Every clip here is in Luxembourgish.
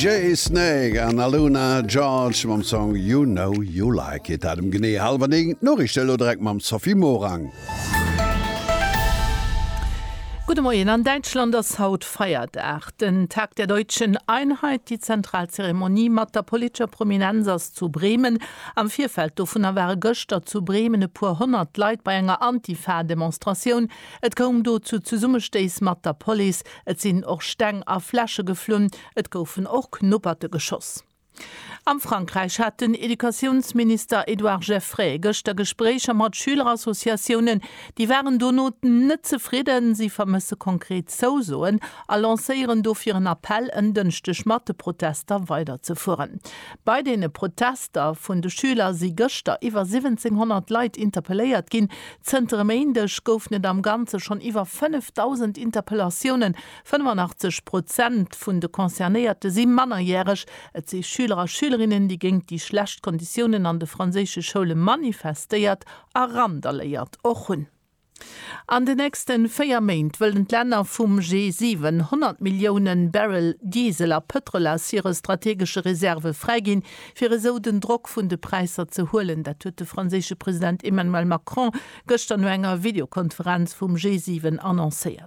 Jay Snake an Aluna George mam Song You Know You Like It. Dat em genee hallwer 9. D'Noriichte elo direkt mam Sophie Morang. Gudde Moien, An Däitschland ass haut Feierdag, den Tag der deutschen Einheit. Déi zentral Zeremonie mat der politescher Prominenz ass zu Bremen. Am Virfeld dovunner ware gëschter zu Bremen e puer honnert Leit bei enger Antifa-Demonstratioun. Et koum do zu Zesummestéiss mat der Police, et sinn och Steng a Fläsche geflunn. Et goufen och Knupperte geschoss. Am Frankräich hat den Educatiounsminister Edouard Geffray gëschter Gespréicher mat Schülerassociatiounen. Déi waren dono net zefridden. Si vermësse konkret Zousoen a lancéieren dofir en Appell, en Dënschdeg mat de Protester weiderzefueren. Bei deene Protester vun de Schüler si gëschter iwwer 1700 Leit interpelléiert ginn. Zënter e Méindeg goufen et am Ganze schonn iwwer 5.000 Interpellatiounen 85 Prozent vun de Concernéierte si mannerjäreg. Et si Schüler a Schülerinnen, déi géint déi schlecht Konditiounen an de franséische Schoule manifestéiert a randaléiert och hunn. An de nächste véier Méint wëllen d'Länner vum G7 100 Millioune Barrel Diesel a Pëtrol aus hire strategesche Reserve fräiginn, fir esou den Drock vun de Präisser ze huelen. Dat huet de franséische President Emmanuel Macron gëschter no enger Videokonferenz vum G7 annoncéiert.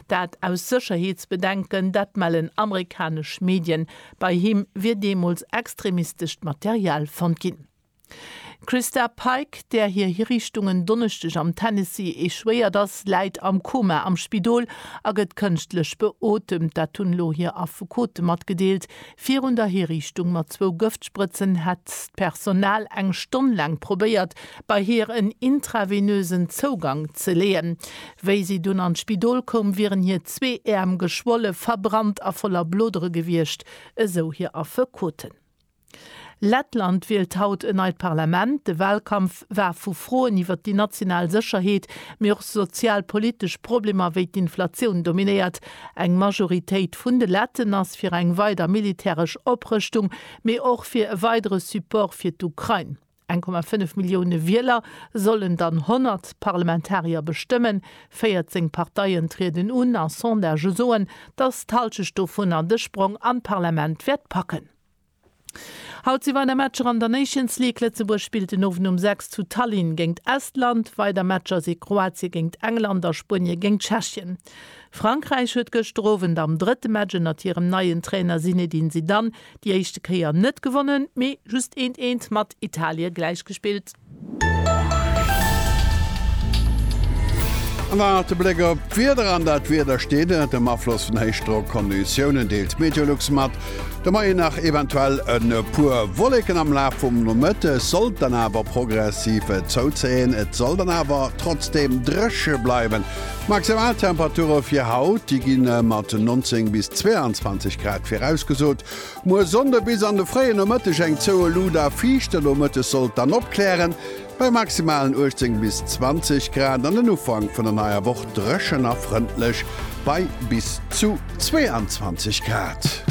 Dat aus Sécherheetsbedenken, dat mellen amerikanesch Medien. Bei him wier deemools extremistescht Material fonnt ginn. D'Christa Pike, där hir Hiriichtung en Donneschdeg am Tennessee echouéiert ass, läit am Koma am Spidol a gëtt kënschtlech beotemt. Dat hunn elo hir Affekote matgedeelt. Virun der Hiriichtung mat zwou Gëftsprëtzen hätt d'Personal eng Stonn laang probéiert, bei hir en intravenösen Zougang ze leeën. Wéi si dunn an d'Spidol koum, wieren hir zwee Äerm geschwolle, verbrannt a voller Blodere gewiescht, esou hir Affekoten. Lettland wielt haut en neit Parlament. De Walkampf Lëscht war vu Froen iwwer déi national Sécherheet, mee och sozialpolitesch Problemer wéi d'Inflatioun dominéiert. Eng Majoritéit vun de Letten ass fir eng weider militäresch Oprëschtung, mee och fir e weidere Support fir d'Ukrain. 1,5 Millioune Wieler sollen dann 100 Parlamentarier bestëmmen. 14 Parteien trieden un a Sondagë soen, datt d'Hallschecht dovunner de Sprong an d'Parlament wäert packen. Haut si weider Matcher an der Nations League. Lëtzebuerg spillt den Owend um 6 zu Tallinn géingt Estland. Weider Matcher si Kroatie géingt England a Spuenie géingt Tschechien. Frankräich huet gëschter Owend am drëtte Match ënnert hirem neien Trainer Zinedine Zidane déi éischte Kéier net gewonnen, mee just eent eent mat Italie gläichgespillt. An dann nach de Bléck op d'Wieder an dat Wieder steet ënnert dem Afloss vun Héichdrockonditiounen, deelt d'Meteolux mat. De Moien nach eventuell e puer Wolleken, am Laf vum Nomëtte sollt dann awer progressiv zouzéien. Et soll dann awer trotzdeem dréche bleiwen. D'Maximaltemperature fir haut, déi gi mat 19 bis 22 Grad virausgesot. Muer Sonnde bis an de fréie Nomëtteg eng zouë Luut a fiicht, de Nomëtteg soll et dann opklären, bei maximalen 18 bis 20 Grad, an den Ufank vun der neier Woch dréchen a frëndlech, bei bis zu 22 Grad.